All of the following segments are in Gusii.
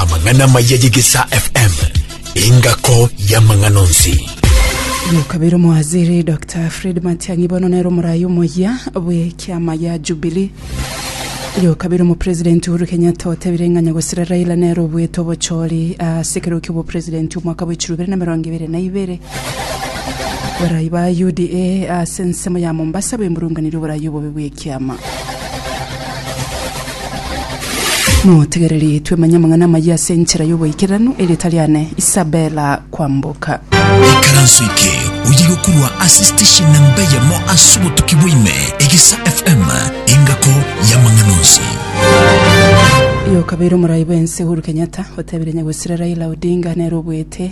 amang'ana maya yegesa fm engako y'amang'ano nsi omokabera omowaziri dr fred matiang'i bono nere omorayi omoyia bw'ekiama ya jubilee yokabera omopresidenti uhuru kenyatta otebire ng'a nyagosira raila nere obwete obochori ase ekerogo ki'obopresidenti omwaka bw'echiro bibere na emerongo ebere na ibere Barai ba UDA ase ensemo ya Mombasa bemurunganire oborai obobe bw'ekiama. Motegereri twemanye amang'ana amayia ase enchera y'oboikeranu erieta riane Isabella kwamboka. ikaranso eke oye gokorwa ase station namba yamo ase obotuki bwaime egisa fm engako y'amang'ana onsi Yokabeire omorai bw'ense Uhuru Kenyatta otebire nyagwesire Raila Odinga nere obwete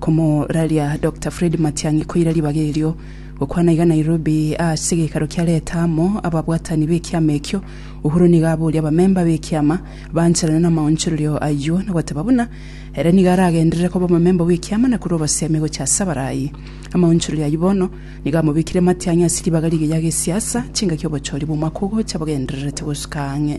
Komoraria Doctor Fred Matiang'i koira ribaga erio. Gokwana iga Nairobi ase geikaro kia Leta amo ababwatani b'ekiama ekio, Uhuru nigo aboria abamemba b'ekiama baancherane namaonchorerio ayio na goteba buna ere nigo aragenderere koba omomemba bw'ekiama na korwa obosemi gochia ase abarai. Amaonchorerio ayio bono nigo amobekire Matiang'i ase ribaga rigiya gesiasa chingaki obochori bw'omwaka ogocha bogendererete gosuka ang'e.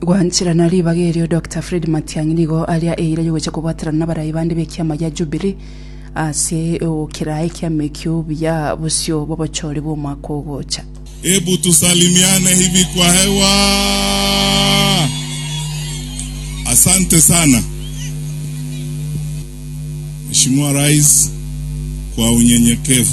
Gwancherana ribaga erio Doctor Fred Matiang'i nigo aria eira yogocha kobwaterana nabarai bande b'ekiama gia Jubilee ase egokera ekiama ekio buya bosio bw'obochori bw'omwaka ogocha. Hebu tusalimiane hivi kwa hewa. Asante sana Mheshimiwa Rais kwa unyenyekevu.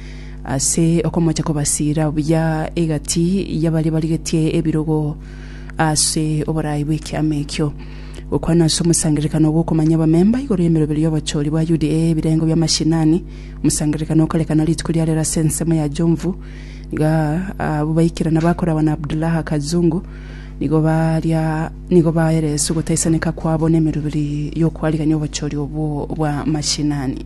ase okomocha kobasiira buya egati y'abaria barigetie ebirogo ase oboraai bw'ekiama ekio. Gokwana ase omosangererekano gw'okomanya abamemba igoro y'emeroberi y'obochori bwa UDA ebirengo bi'amashinani, omosangererekano okarekana rituko ria rero ase ensemo ya Jomvu, nigo abwo baikerana bakoragwa na Abdullaha Kazungu nigo baria nigo baeresa ogotaisaneka kwabo n'emeroberi y'okwarigania obochori obwo bw'amashinani.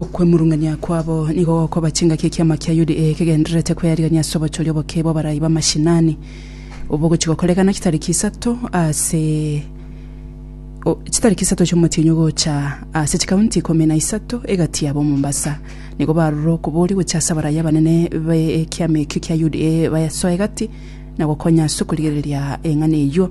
Okwemurung'ania kwabo nigo gokoba chingaki ekiama kia UDA kegendererete kwearigania ase obochoria oboke bw'abarai b'amashinani obogochia gokorekana chitariki isato ase chitariki isato chi'omotienyi ogocha ase chikaunti ikomi na isato egati yabo Mombasa. Nigo barure okoboria gochia ase abarai abanene b'ekiama ekio kia UDA bayasoe egati na gokonya ase okorigereria eng'ana eyio.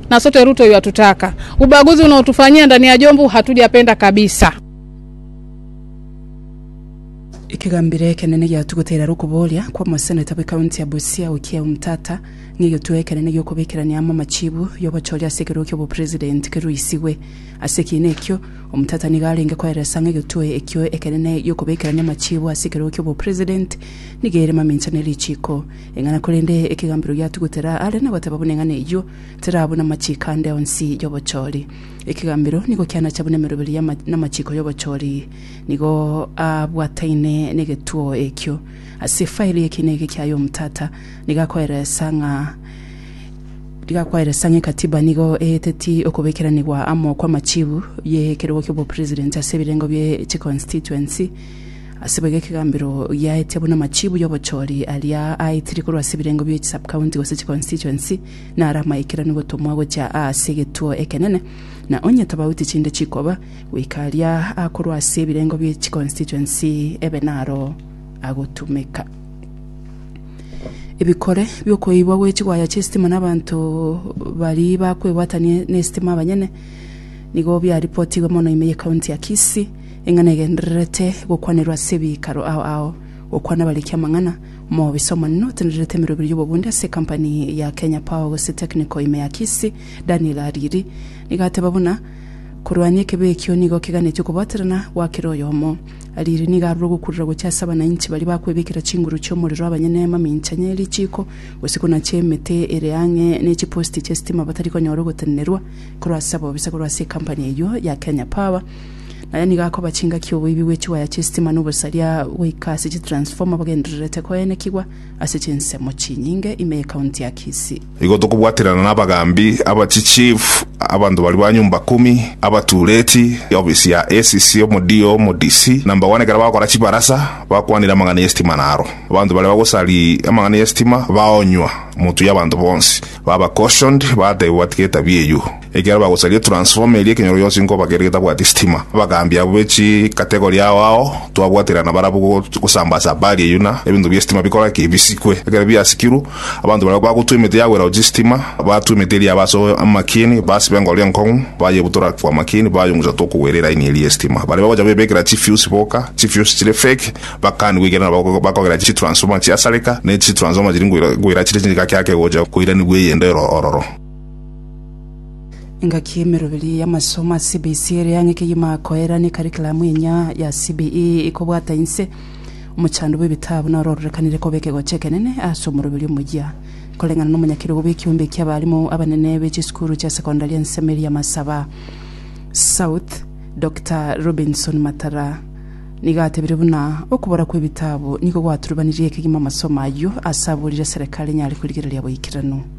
na sote Ruto yuatutaka. Ubaguzi unaotufanyia ndani ya Jomvu hatujapenda kabisa. Ekegambero ekenene giatugute eraro okoboria kw'omoseneta bw'ekaunti ya Busia Okiya Omtata ng'a egetuo ekenene gi'okobekerania amo amachibu y'obochori ase ekerogo ki'obopresident keruisigwe. Ase ekiina ekio, Omtata nigo arenge koeresa ng'a egetuo ekio ekenene gi'okobekerania amachibu ase ekerogo ki'obopresident nigo ere mamincha ne richiko Ing'ana korende ekegambero gia tugutera are na goteba buna eng'ana eyio tera buna machiko ande onsi y'obochori. Ekegambero nigo kianacha buna emeroberi ya namachiko y'obochori nigo abwataine negetuo ekio. Ase efairi y'ekiina eke kiaye omotata nigo akoeresa ng'a nigo akoeresa ng'a ekatiba nigo eeteti okobekeranigwa amo kwa amachibu y'ekerogo ki'obopresident ase ebirengo bie chiconstituency. Ase boigo ekegambero giaetia buna amachibu y'obochori aria aitirie korwa ase ebirengo bie chisubcounty gose chiconstituency naro amaikeranu gotomwa gochia aase egetuo ekenene, na onye tobauti chinde chikoba, goika aria akorwa ase ebirengo bie chiconstituency ebe naro agotumeka. Ebikore bi'okoibwa gwe chigwaya chi'esitima n'abanto baria bakwebwatania n'esitima abanyene nigo biaripotigwe mono ime ye county ya Kisii, Eng'ana egendererete gokwanerwa ase ebiikaro ao ao, gokwana abariki amang'ana, omobisa omonene otendererete emerwa ebere y'obobundia ase ekampani ya Kenya Power gose Technical ime ya Kisii, Daniel Ariri, nigo ateba buna, Korwania ekebeyo ekio nigo keganeti okobaterana gwa kera oyomo. Ariri nigo arure ogokurera gochia ase abanainchi baria bakwebekera chinguru chi'omorero abanyene amamincha ne richiiko gose konache emete ere ang'e ne chiposti chi'esitima batari konyora ogotenenerwa korwa ase abobisa korwa ase ekampani eyio ya Kenya Power Naye nigo akoba chingaki oboibi bwe chiwaya chi'esitima na obosaria goika ase chitransformer bagendererete koenekigwa ase chinsemo chinyinge ime y'Ekaunti ya Kisii. Igo tokobwaterana na abagaambi, aba chichief, abanto baria ba nyomba kumi, abatureti, ofisi ya ACC, omoDO, omoDC, number one ekero bagokora chibarasa, bakwanire amang'ana y'esitima naro. Abanto baria bagosari amang'ana y'esitima baonywa, motuya abanto bonsi, baba cautioned, batebwa batige etabia eyio. Ekiagera bagosaria transformer eria ekenyoro gionsi nkoba kere getabwati sitima. Abagaambi abwo be chi category ao ao twabwaterana barabwo go gosambasa habari eyio na ebinto bie sitima bikora ki? Bisikwe. Ekero biasikirwe, abanto baria bagotwa emete ya gwera gochia sitima, batwa emete eria aba ase amakieni, basiba engoro enkong'u, bayebutora kwa amakieni, bayong'usa tokogwera eline eria ye sitima. Baria bagocha goyebekera chi fuse boka, chi fuse chire fake, bakanigwe ekiagera nabo ba bakogera chi transformer chiasareka, ne chi transformer chiri ngoira ngoira chire chingaki ake gocha koiranigwa eyende ero ororo. Engaki y'emeroberi y'amasomo a CBC ere ang'e kegima koeran'ia ekarikiramu enyia ya CBE ikobwata inse, omochando bw'ebitabu noro ororekanire koba ekegocho ekenene ase omoroberi omoyia. Koreng'ana n'omonyakerogo bw'ekiombe ekia abarimu abanene be chisukuru chia secondary ense Miriam Asaba South, Doctor Robinson Matara nigo atebire buna okobora kw'ebitabu nigo gwaturubanirie kegima amasomo ayio ase aborire serikali enyare korigereria boikeranu.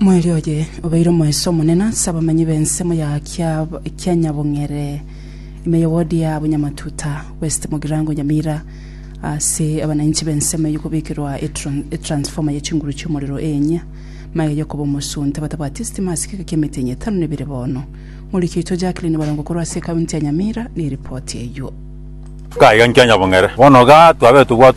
Moerio oye obeire omoeso omonene ase abamanyi b'ensemo ya Kianyabong'ere ime y'ewodi ya Bunyamatuta West Mugirango Nyamira ase abananchi b'ensemo eyio kobekerwa etransformer ye chinguru chi'omorero eenya maega yokoba omosunte batabwati estima ase egeka kia emitinyi etano nebere bono. Moriki oito Jacqueline Barongo korwa ase ekaunti ya Nyamira neripoti eyio. Gaiga Kianyabong'ere bono iga twabete obwato